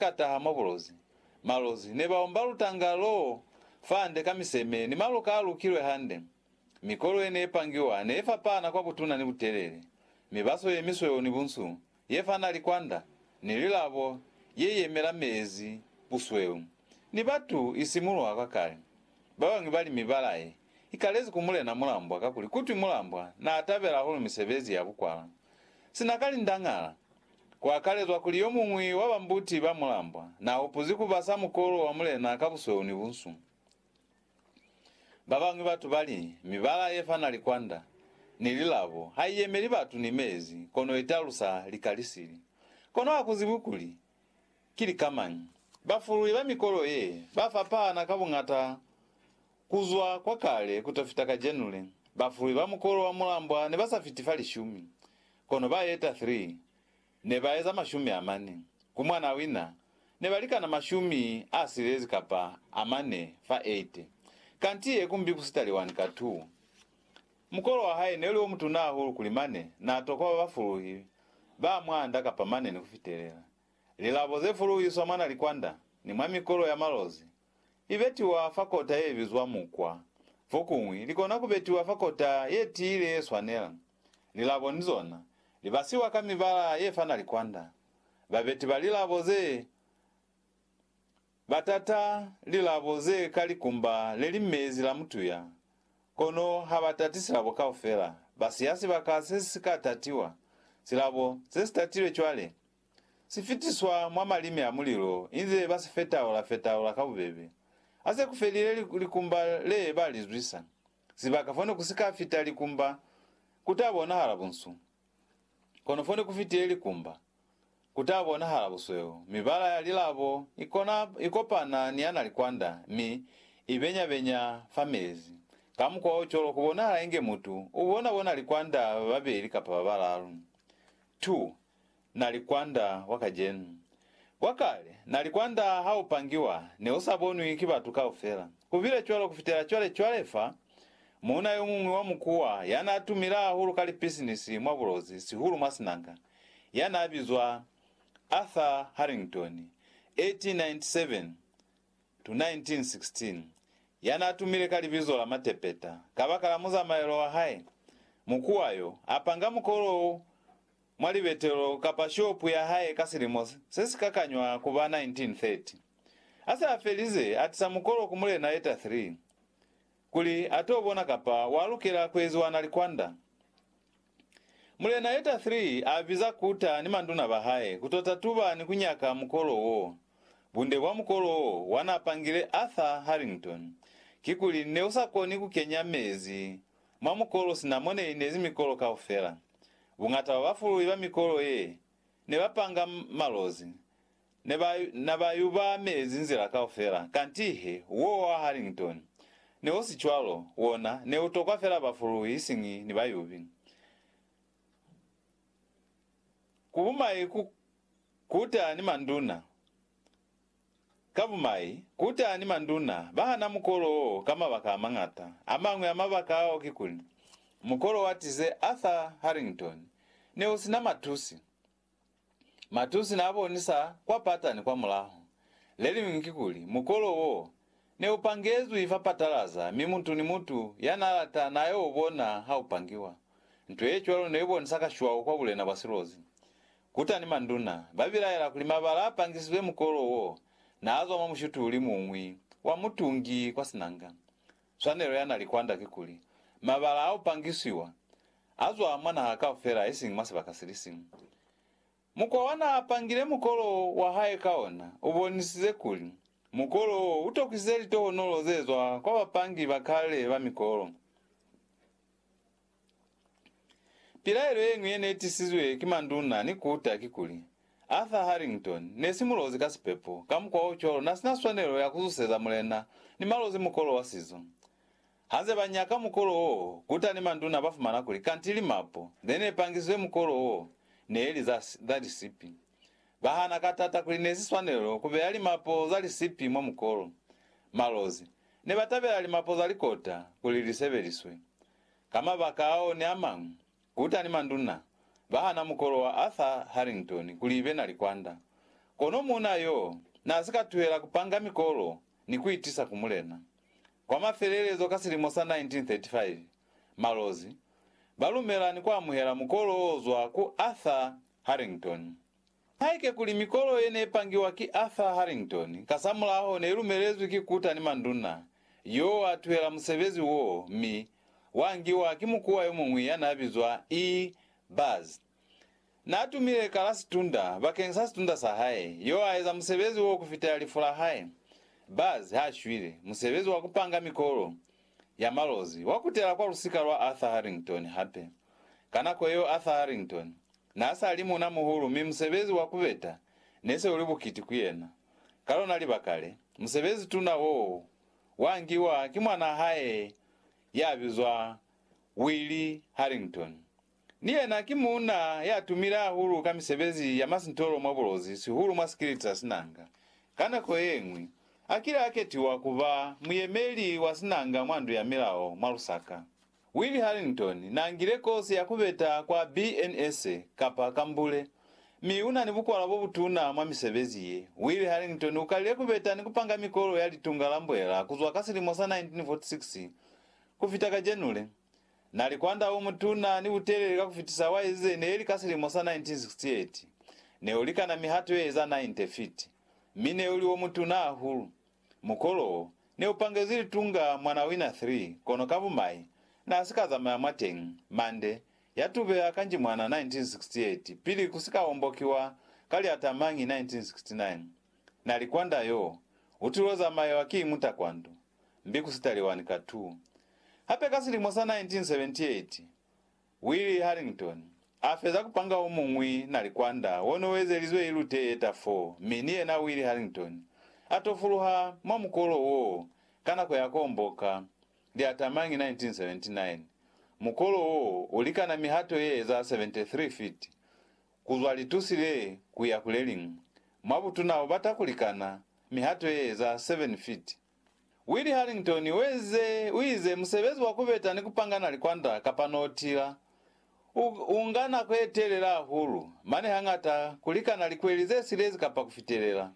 Ka taha mwa bulozi, malozi ne ba omba lutanga loo fande ka miseme ni maluka a lukilwe hande. Mikolo ye ne pangiwa ne fapana kwa butuna ni butelele, mibaso ye misweu ni bunsu, ye fana likwanda, ni lilabo ye yemela meezi, busweu, ni batu i simulwa kwa kale. Ba bañwi ba li mibala ye i kalezi ku Mulena Mulambwa kakuli kutwi Mulambwa naa tabela hahulu misebezi ya bukwala sina ka lindañala. Kuakalezwa kuli yomuñwi wa ba mbuti ba mulambwa naahupuzi kubasa mukolo wa mulena ka busweu ni bunsu. Babañwi batu bali, Mibala yefana likwanda ni lilabo haiyemeli batu ni meezi, kono italusa lika lisili. Kono hakuzibwi kuli ki lika mañi. Bafului ba mikolo ye bafapahana ka buñata Ku zwa kwa kale ku to fita kajenu le, bafuwi ba mukolo wa mulambwa ne ba sa fiti fa lishumi, kono ba eta 3 ne ba eza mashumi a mane. Ku mwana wina, ne ba likana mashumi a silezi kapa a mane fa 80. Kanti ye kumbi ku sitali wani ka 2. Mukolo wa hae ne u li o mutuna hahulu kuli mane n'a tokwa ba ba fuluhi ba mwa nda kapa mane ni ku fitelela lilabo ze fuluhiswa mwa nalikwanda ni mwa mikolo ya malozi I betiwa fa kota ye bizwa mukwa. Fokuñwi, li kona ku betiwa fa kota ye tiile ye swanela. Lilabo ni zona, li basiwa ka mibala ye fana likwanda. Babeti ba lilabo ze ba tata lilabo ze ka likumba le li mezi la mutuya, kono ha ba tati silabo kaufela. Ba siya sibaka se si si ka tatiwa. Silabo se si tatilwe cwale, Si fitiswa mwa malimi a mulilo inze ba si fetaula-fetaula ka bubebe. Ha se ku felile likumba le ba li zwisa, sibaka fone ku si ka fita likumba ku ta bonahala bunsu, kono fone ku fitile likumba, ku ta bonahala busweu. Mibala ya lilabo i kona i kopana ni ya na likwanda mi i benya-benya fa mezi. Ka mukwa o cwalo ku bonahala inge mutu u bona bona likwanda ba babeli kapa ba balalu. 2. Na li kwanda wa kacenu. Kwa kale, na li kwanda ha u pangiwa, ne u sa bonwi ki batu kaufela. Ku bile cwalo ku fitela cwale. Cwale fa, muuna yo muñwi wa mukuwa, ya n'a tumile hahulu ka lipisinisi mwa bulozi, sihulu mwa sinanga, ya n'a bizwa Arthur Harrington, 1897-1916, ya n'a tumile ka libizo la Matepeta, kabakala muzamaelo wa hae, mukuwa yo, a panga mukolo wo mwa libetelo kapa shopu ya hae ka silimo se si ka kanywa ku ba 1930. A se a felize, a tisa mukolo ku Mulena Leta 3 kuli a t'o bona kapa wa lukela ku eziwa na likwanda. Mulena Leta 3 a biza Kuta ni manduna ba hae ku t'o tatuba ni ku nyaka mukolo wo. Bunde bwa mukolo wo wa n'a pangile Arthur Harrington kikuli ne u sa koni ku kenya mezi mwa mukolo sina mo ne inezi mikolo kaufela. Buñata bwa bafululi ba mikolo ye ne ba panga malozi ne ba na ba yuba mezi nzila kaufela, kanti he wo wa Harrington ne u si cwalo, wona ne u tokwa fela bafululi isiñi ni bayubi. Ku bumai ku kuta ni manduna. Ka bumai, kuta ni manduna ba hana mukolo wo ka mabaka a mañata. A mañwi a mabaka ao kikuli, mukolo wa tize Arthur Harrington ne u si na matusi. Matusi n'a bonisa kwa pata ni kwa mulaho. Le liñwi kikuli, mukolo wo ne u pangezwi fa patalaza mi mutu ni mutu ya n'a lata n'a y'o bona ha u pangiwa. Nto ye cwalo ne i bonisa kashwau kwa bulena bwa silozi. Kutani manduna ba bilaela kuli mabala a pangisizwe mukolo wo n'a zwa mwa mushutuli mu ñwi wa mutungi kwa sinanga. Swanelo ya n'a li kwand'a ki kuli, mabala a u pangisiwa a zwa mwa naha kaufela isiñi mwa sibaka si li siñwi. Mukwa wa n'a pangile mukolo wa hae ka ona u bonisize kuli mukolo wo u tokisize litohonolo ze zwa kwa bapangi ba kale ba mikolo. Pilaelo yeñwi yene itisizwe ki manduna ni kuta kikuli, Arthur Harrington nesi mulozi ka sipepo, kamukwaocwalo nasina swanelo ya kuzuseza mulena ni malozi mukolo wa sizo. Hanze banyaka mukolo wo, kuta ni manduna bafumana kuli kanti limapo zenepangisizwe mukolo wo neeli za lisipi. Bahana ka tata kuli nesi swanelo kubeya limapo za lisipi mwa mukolo. Malozi nebatabela limapo za likota kuli lisebeliswe. Ka mabaka ao ni a mañwi, kutani manduna ba hana mukolo wa Arthur Harrington kuli ibe na likwanda. Kono muuna yoo n'a si ka tuhela ku panga mikolo ni ku i tisa ku mulena. Kwa mafelelezo ka silimo sa 1935, malozi ba lumela ni ku amuhela mukolo o zwa ku Arthur Harrington. Haike kuli mikolo ye ne pangiwa ki Arthur Harrington kasamulaho ne lumelezwi ki kuta ni manduna, yo wa tuhela musebezi wo mi wa ngiwa ki mukuwa yo muñwi ya n'a bizwa E. Buzz. N'a tumile ka la sitund'a bakeng sa sitund'a sa hae, yo a eza musebezi wo ku fitela lifu la hae. Buzz h'a shwile, musebezi wa ku panga mikolo ya malozi wa kutela kwa lusika lwa Arthur Harrington hape. Ka nako yeo Arthur Harrington n'a sa li muuna-muhulu mi musebezi wa ku beta ne se u li bukiti ku yena. Ka lona libaka le, musebezi-tuna w'o wa ngiwa ki mwan'a hae ya bizwa Willie Harrington Ni yena ki muuna ya tumile hahulu ka misebezi ya masintolo mwa bulozi, sihulu mwa sikiliti sa sinanga. Ka nako ye ñwi, a kile a ketiwa ku ba muyemeli wa sinanga mwa Ndu ya Milao mwa Lusaka. Willie Harrington n'a ngile kosi ya ku beta kwa BNS, kapa ka mbule, mi u na ni bukwala bo butuna mwa misebezi ye. Willie Harrington u kalile ku beta ni ku panga mikolo ya litunga la mbwela ku zwa ka silimo sa 1946 ku fita ka January Na li kwanda o mutuna ni butelele ka ku fitisa wa ezize neli ka silimo sa 1968. Ne u likana mihato ye eza 90 fiti, mi ne u li o mutuna hahulu. Mukolo wo, ne u pangezi litunga mwa na wina 3, kono ka bumai, na si ka zamaya mwateñi. Mande, ya tubeha ka Njimwana 1968, pili ku si ka ombokiwa ka liatamañi 1969. Na li kwanda yoo, u tulo zamayewa ki mutakwandu. mbi ku sitaliwani ka tu. Hape ka silimo sa 1978, Willie Harrington a feza ku panga o muñwi na likwanda wo no ezelizwe i lute ye ta fo, mi ni yena Willie Harrington a tofuluha mwa mukolo woo ka nako ya ku omboka liatamañi 1979. Mukolo woo u likana mihato ye eza 73 fiti Ku zwa litusi le ku ya ku le liñwi, mwa butuna u bata ku likana mihato ye eza 7 feet. Willie Harrington u ezize, u ize, Musebezi wa ku beta ni ku pangana likwanda kapa notila u, u nga nako ye telela hahulu, mane hañata ku likana likweli ze silezi kapa ku fitelela.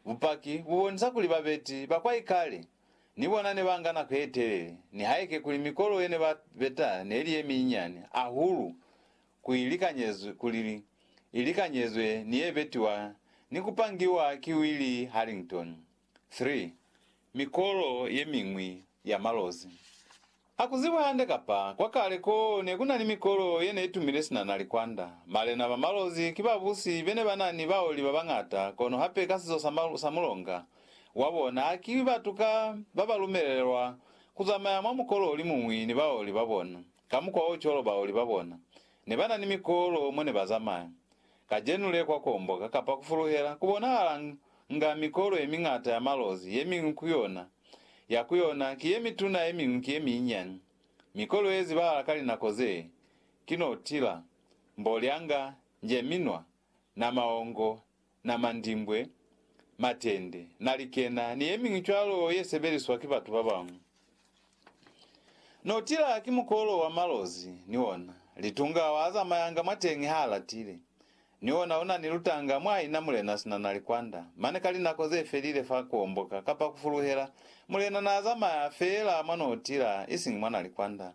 Bupaki bu bonisa kuli babeti ba kwa ikale ni bona ne ba nga nako ye telele, nihaike kuli mikolo ye ne ba beta ne li ye minyinyani hahulu ku i likanyezwe, kuli i likanyezwe ni ye betiwa ni ku pangiwa ki Willie Harrington. 3, Mikolo ye miñwi ya malozi. Ha ku zibi hande kapa kwa kale ko ne ku na ni mikolo ye ne i tumile sina na likwanda. Malena ba malozi ki babusi be ne ba na ni baoli ba bañata, kono hape ka sizo sa, sa mulonga wa bona, ha ki batu ka ba ba lumelelwa ku zamaya mwa mukolo o li muñwi ni baoli ba bona. Ka mukwa wo cwalo baoli ba bona ne ba na ni mikolo mo ne ba zamaya. Kacenu le kwa komboka kapa ku fuluhela ku bonahala nga mikolo ye miñata ya malozi, ye miñwi ku yona ya ku yona ki ye mituna ye miñwi ki ye minyinyani. Mikolo ye zibahala ka linako ze ki notila, mbolyanga, njeminwa, na maongo, na mandimbwe, matende, na likena, ni yemiñwi cwalo ye sebeliswa ki batu babañwi. No tila ki mukolo wa malozi, ni ona. Litunga wa zamayanga mwateñi ha latile. Ni ona una ni lutanga mwa ina mulena sina na likwanda, mane ka linako ze felile fa kuomboka kapa kufuluhela, mulena na zamaya feela mwa no tila, isiñi mwa na likwanda.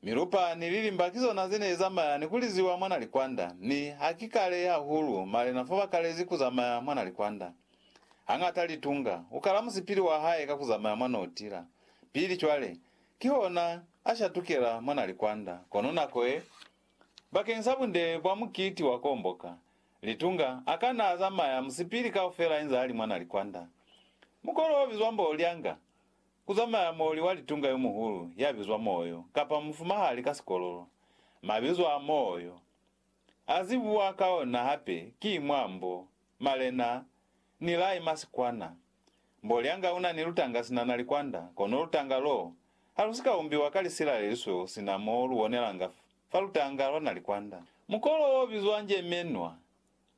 Milupa ni lilimba ki zona ze ne li zamaya ni ku liziwa mwa na likwanda, mi ha ki kale hahulu malena fa ba kalezi ku zamaya mwa na likwanda. Hañata Litunga u kala musipili wa hae ka ku zamaya mwa no tila pili cwale, kihona a shatukela mwa na likwanda. Kono nako ye, bakeng sa bunde bwa mukiti wa komboka, Litunga a ka na a zamaya musipili kaufela inza a li mwa na likwanda. Mukolo o bizwa mbo Lyanga Ku zamaya moli wa litunga yo muhulu ya bizwa Moyo, kapa mufumahali ka sikololo. Mabizo a Moyo, a zibuwa ka ona hape ki mwa mbo, malena, ni lai ma sikwana. Mbolyanga una ni lutanga sina na likwanda, kono lutanga lo ha lu si ka umbiwa ka lisila le lisweu sina mo lu bonelanga fa lutanga lwa na likwanda. Mukolo wo bizwa njemenwa,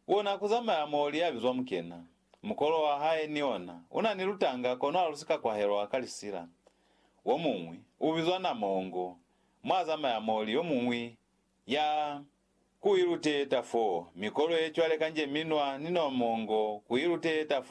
Kona kuzamaya mo lia bizwa mukena. Mukolo wa hae ni ona una ni lutanga kono alusika kwahelwa ka lisila. Womuñwi ubizwa Namongo, mwazamaya mo li yomuñwi ya. Kuiluteta foo. Mikolo yecwale kanje minwa ni Nomongo kuiluteta foo.